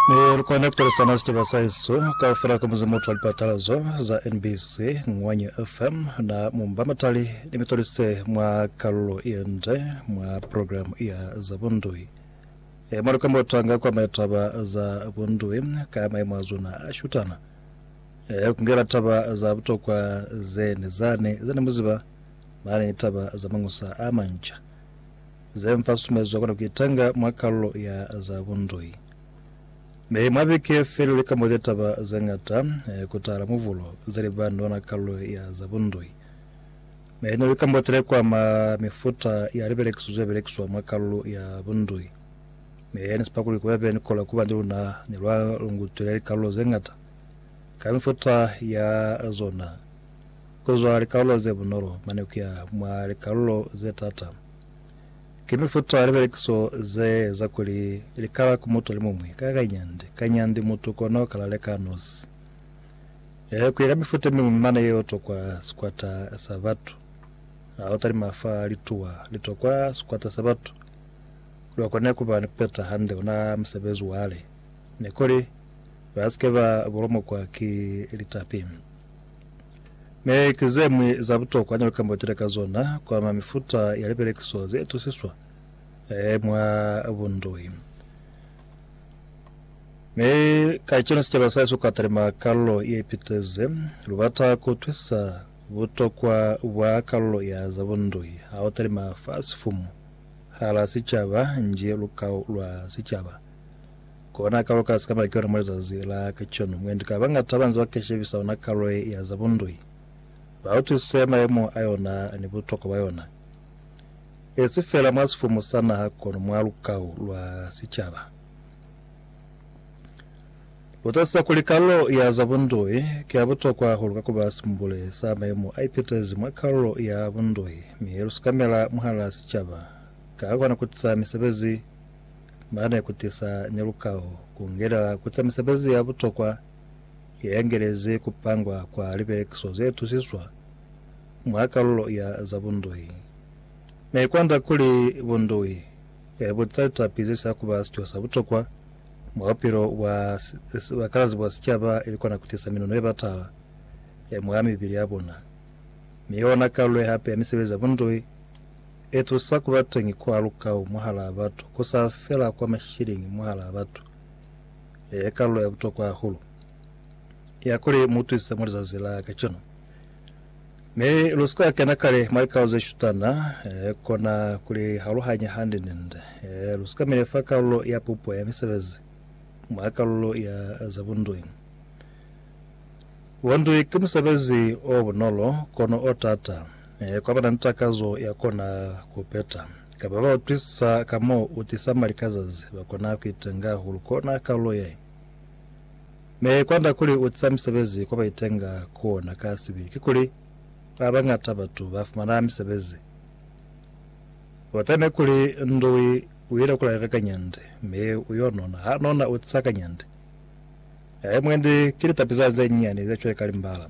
Mi lu kona ku pilisana sicaba sa hesu kaufela ka muzimu utwa lipatalazo za NBC, Ngwanyi FM na Mumba Matali ni mitolise mwa kalulo yende mwa programu ya za bundui. E mwa lukamba utanga kwa maya taba za bundui ka maimo a zona a shutana. E ku ngela taba za butokwa zeni zani zani muziba mani ni taba za mañusa a manca. Ze m'fa susumezwa kona kuitanga mwa kalulo ya za bundoi. Mi mwa beke feli li kambote taba ze ñata ku tahala mubulo ze li ba ni ona kalulo ya za bundoi. Mi ne li kambotele ku ama mifuta ya libelekiso ze belekiswa mwa kalulo ya bundoi. Mi ni sipa kuli kubepe ni kola kuba ni luna ni lwa lungutwile likalulo ze ñata ka mifuta ya zona, ku zwa likalulo ze bunolo mane kuya mwa likalulo ze tata. Ki mifuta ya libelekiso ze eza kuli li kala ku mutu alimuñwi ka kanyandi kanyandi mutu kono kala leka nosi. Ee, kuya ka mifuta yemiñwi mane yeo tokwa sikwata sa batu. Ha u talima fa lituwa li tokwa sikwata sa batu, kuli bakone kuba ni kupeta hande ona musebezi wale, ni kuli basike ba bulomokwa ki litapi. Mi ki zeñwi za butokwa neli kambotile ka zona ku ama mifuta ya lipelekiso ze itusiswa mwa bundoi. Mi kacenu sicaba sahesu ka talima kalulo ye ipitezi. Lubata ku twisisa butokwa bwa kalulo ya za bundoi ha u talima fa sifumu hala sicaba nji lukau lwa sicaba. Kona kalo ka sikaba ki yona mwa lizazi la kacenu. Mwendi ka bañata banze ba ka shebisa yona kalo ye ya za bundui, ba utwisise mayemo a yona ni butokwa bwa yona, e si fela mwa sifumu sa naha kono mwa lukau lwa sicaba. Lu tatisisa kuli kalo ye ya za bundui ki ya butokwa hahulu ka ku ba simbule sa mayemo a ipitezi mwa kalulo ya bundui, mi lu sikamela mwahal'a sicaba ka kona ku tisa misebezi, ba ne ku tisa ni lukao ku ngelela ku za misebezi ya butokwa ye ngelezi ku pangwa kwa lipelekiso ze tusiswa mwa kalulo ya za bundui. Ne i kwanda kuli bundui e bu za litapi ze sa ku ba sico sa butokwa mwa bupilo bwa bakalazi bwa sicaba ili kona ku tisa minono ye batala mwa mibili ya bona, mi yona kalulo ye hape ya misebezi ya bundui. E tusa ku ba teñi kwa lukau mwahalaa batu, ku sa fela kwa mashiliñi mwahalaa batu, e kalulo ya butokwa hahulu ya kuli mu twise mwa lizazi la kacenu. Mi lu si ka kena kale mwa likau ze shutana, e kona ku li haluhanya hande ni nde. E lu si ka mile fa kalulo ya pupo ya misebezi mwa kalulo ya za bundui. Bundui ki musebezi o bunolo, kono o taata. Ee, kwa ba na ni takazo ya kona ku peta. Ka ba ba utwisisa ka mo u tisa mali ka zazi, ba kona ku itenga hahulu kona kalulo ye. Me kwanda kuli u tisa misebezi kwa ba itenga ku ona ka sibili ki kuli, ba bañata batu ba fumana misebezi. U tame kuli Ndui u ile ku laleka kanyandi, mi u yo nona. Ha nona, u tisa kanyandi. Ee, mwendi, ki litapi za ze nyinyani ze cweka limbala.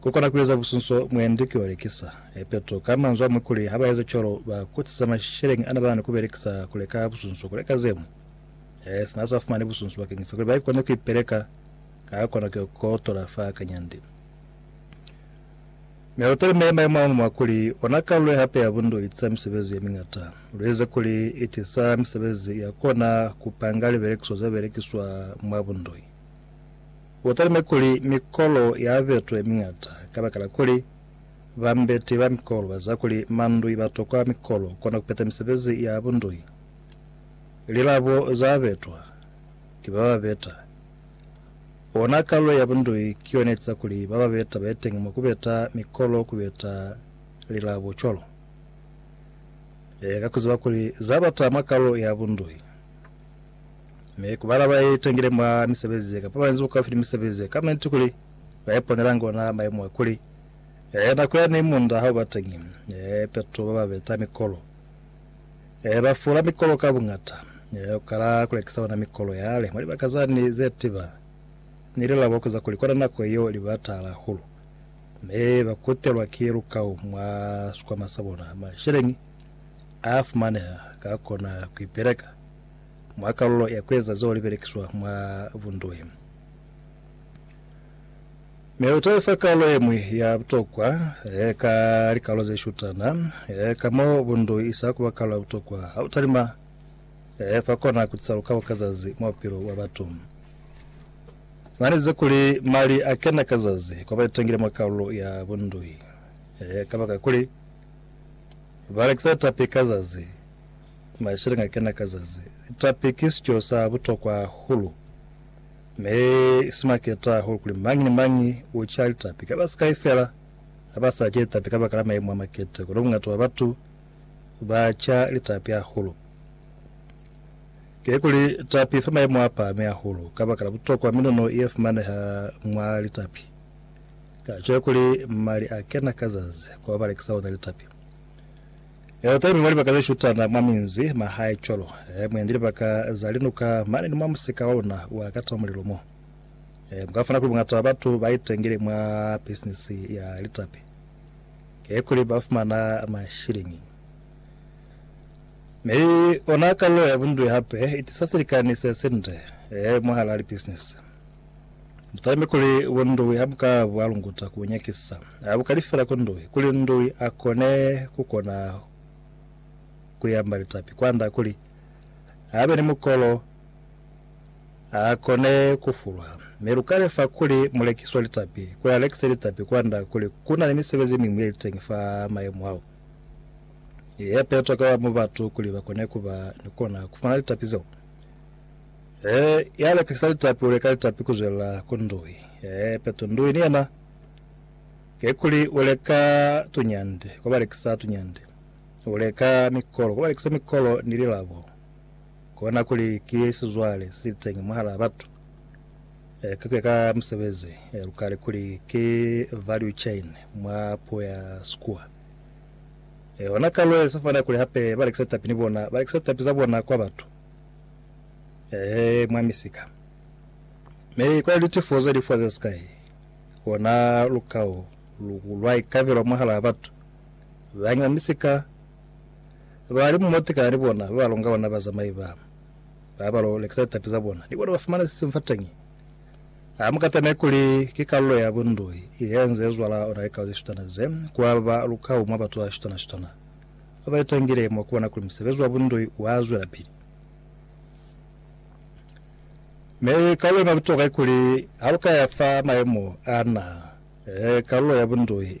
Ku kona ku eza busunso mwendi ki olekisa. Petro ka manzwi amwi kuli ha ba eza cwalo ba kutisa masheleñi ana ba na ni ku belekisa ku leka busunso, ku leka ze ñwi. Ee, sina sa fumani busunso bakeñisa kuli ba kone ku ipeleka, ka kona ku yo kotola fa kanyandi. Mi lu talimele mayemo a muñwi a kuli, Ona kalulo ye hape ya bundu i tisa misebezi ye miñata. Lu eze kuli i tisa misebezi ya kona ku panga libelekiso ze belekiswa mwa bundoi. U talime kuli mikolo ya betwe miñata kabakala kuli bambeti ba mikolo ba ziba kuli mandui ba tokwa mikolo kona ku peta misebezi ya bundui. Lilabo za betwa ki ba ba beta. Ona kalulo ya bundui ki yona etiza kuli ba ba beta ba ye teñi mwa ku beta mikolo ku beta lilabo cwalo. Leka ku ziba kuli za bata mwa kalulo ya bundui. Mi ku bala ba itangile mwa misebezi ye kapa ba inzi bukaufi ni misebezi ye kama inti kuli ba iponelangi ona maimo a kuli, ee, nako yani munda ha u ba teñi, ee, peto ba ba beta mikolo, ee, ba fula mikolo ka buñata, ee, u kala ku lekisa ona mikolo yale mwa libaka zani ze tiba ni lilabo ku za kuli kona nako yeo li batahala hahulu. Mi ba kutelwa ki lukau mwa sikwama sa bona, masheleñi a fumaneha ka kona ku ipeleka. mwa kalulo ya kueza zeo libelekiswa mwa bunduhi. Mi lutaefa kalulo yeñwi ya butokwa ka likalulo zeshutana ka mo bunduhi isa kuba kalulo ya butokwa ha utalima fa kona kutisa lukabo ka zazi mwa bupilo bwa batu. Nanize kuli mali akena ka zazi kwa baitangile mwa kalulo ya bunduhi kabakakuli balekisa litapi ka zazi. Mashilinga kena ka zazi. Tapi ki sico sa butokwa hahulu, mi si maketa hahulu kuli mañi ni mañi u ca litapi. Ka basikai fela ha ba sa ce litapi kabaka la maimu a makete, kono bungata bwa batu ba ca litapi hahulu. Kikuli, tapi fa maimu a pahami hahulu kabaka la butokwa miluno ye fumaneha mwa litapi. Tato ye kuli mali a kena ka zazi kwa balekisa ona litapi. Eoteni mwa libaka ze shutana mwa minzi, mahae cwalo, e, mwendi libaka za linuka mane ni mwa musika wa luna wa ka tama mulilo mo. E, mu ka fumana kuli bungata bwa batu ba itengile mwa bisinisi ya litapi, ki kuli ba fumana mashilingi. Mi ona kalulo ya bundwi hape i tisa silikani se sinde, e, mwahalaa libisinisi. Mutalime kuli bo Ndui a buka bwa lunguta ku nyakisa. A buka lifela ku Ndui, kuli Ndui a kone ku kona ku yamba litapi kwanda kuli a be ni mukolo a kone ku fulwa. Mi lu ka lefa kuli mu lekiswa litapi, kuli a lekise litapi kwanda kuli ku na ni misebezi ye miñwi ye li teñi fa mayemo ao ye petwa ka mwa batu kuli ba kone ku ba ni kona ku fumana litapi zeo. Ee, ya lekisa litapi u leka litapi ku zwelela ku ndui. Ee, peto ndui ni yena, kikuli u leka tunyande kwa ba lekisa tunyande, u leka mikolo kwa ba lekisa mikolo ni lilabo, kona kuli ki sizwale se sili teñi mwahalaa batu. Ee, ka kuya ka musebezi, ee, lu kale kuli ki value chain mwa puo ya Sikua. Ee, hona ka lwe sa fana kuli hape ba lekisa litapi ni bona, ba lekisa litapi za bona kwa batu. Ee, mwa misika. Mi kwa litifo ze lifwa ze sikai, kona lukao lu lwa ikabelwa mwahalaa batu. Bañwi ba misika ba li mumo tekana ni bona, ba ba longa bona bazamai ba, ba ba lo lekisa litapi za bona, ni bona ba fumana sisimu fateñi. Ha mu katameki kuli ki kalulo ya bundoi ye nze zwala ona likao ze shutana ze, ku aba lukao mwa batu ba shutana-shutana. ba ba litangile mwa ku bona kuli musebezi wa bundoi wa zwelapili. Mi kalulo ima butokwa ikuli ha lu ka ya fa mayemo a na, kalulo ya bundoi